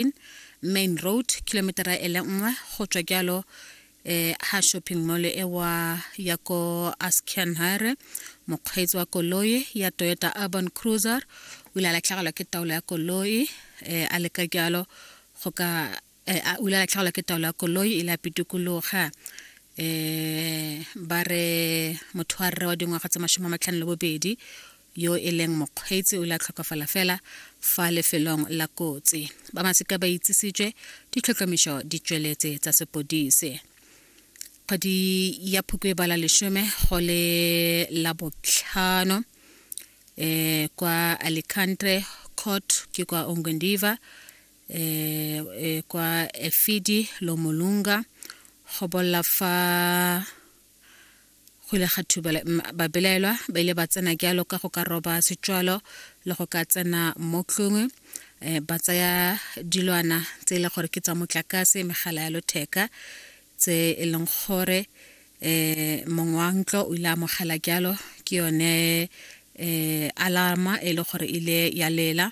15 main road kilometera e le nngwe go tswa jalo eh ha shopping mall e wa ya ko Askenhare mokgweetsi wa koloi ya Toyota Urban Cruiser o ile a latlhegelwa ke taolo ya koloi eh a leka jalo go ka eh, a- o ile a latlhegelwa ke taolo ya koloi e ile a pitikologa eh ba re motho wa rre wa dingwaga tse mashome a matlhano le bobedi yo e leng mokgweetsi o la tlhokafala fela fa lefelong la kotsi ba masika ba itsisitswe ditlhotlhomišo di tsweletse tsa sepodise kgwedi ya phukwe ba la lesome go le la botlhano eh kwa Alicante court ke kwa Ongondiva eh, eh kwa Efidi Lomolunga go bolla fa Go ile ga thuba babelaelwa ba ile ba tsena jalo ka go ka roba setswalo le go ka tsena mo tlongwe eh, ba tsaya dilwana tse e le gore ke tsa motlakase megala ya lotheka tse e leng gore eh mong wa ntlo o ile a mogela jalo ke yone eh alarma e le gore ile ya lela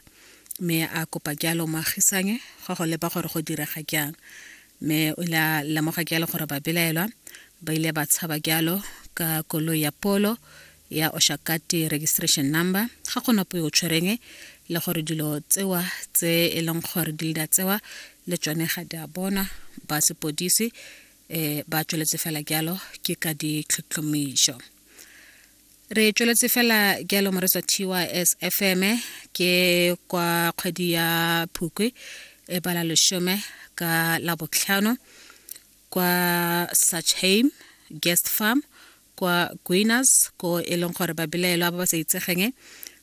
me a kopa jalo moagisanye go go leba gore go direga jang mme o ile a lemoga jalo gore babelaelwa ba ile ba tshaba jalo ka koloi ya polo ya oshakati registration number ga go napo yo tshwereng le gore dilo tsewa tse e leng gore di leda tsewa le tsone ga di a bonwa ba sepodisi um ba tsweletse fela jalo ke ka ditlhotlhomišo re tsweletse fela jalo moretswa tys fm ke kwa kgwedi ya phukwe e bala lesome ka labotlhano kwa sachheim guest farm kwa guiners ko e leng gore babelaelwa ba ba sa itsegeng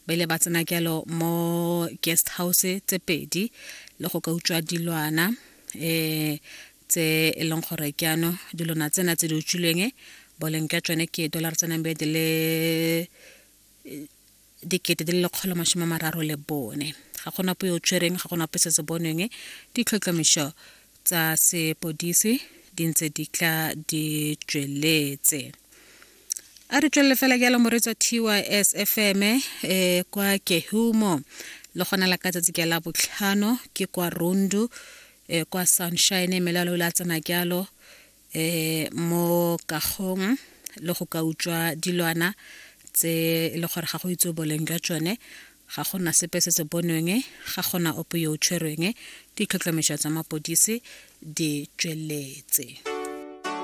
ba ile ba tsena jalo mo guest house tse pedi le go ka utswa dilwana um tse e leng gore ke ano dilona tsena tse di utswilweng boleng jwa tsone ke dollar tsa nambe di le dikete di le lekgolo masome a mararo le bone ga gona po yo tshwereng ga gona po se se bonweng ditlhotlhomišo tsa sepodisi di ntse di tla di tsweletse a re tswelele fela jalo moretsa tys fm um eh, kwa kehumo le gona la ka tsatsi ke la botlhano ke kwa rundu e, kwa sunshine melalo la tsena jalo e, mo kagong le go ka utswa dilwana tse e le gore ga go itse boleng jwa tsone ga gona sepe se se bonweng ga gona ope yo o tshwerweng ditlhotlhomišo tsa mapodisi di tsweletse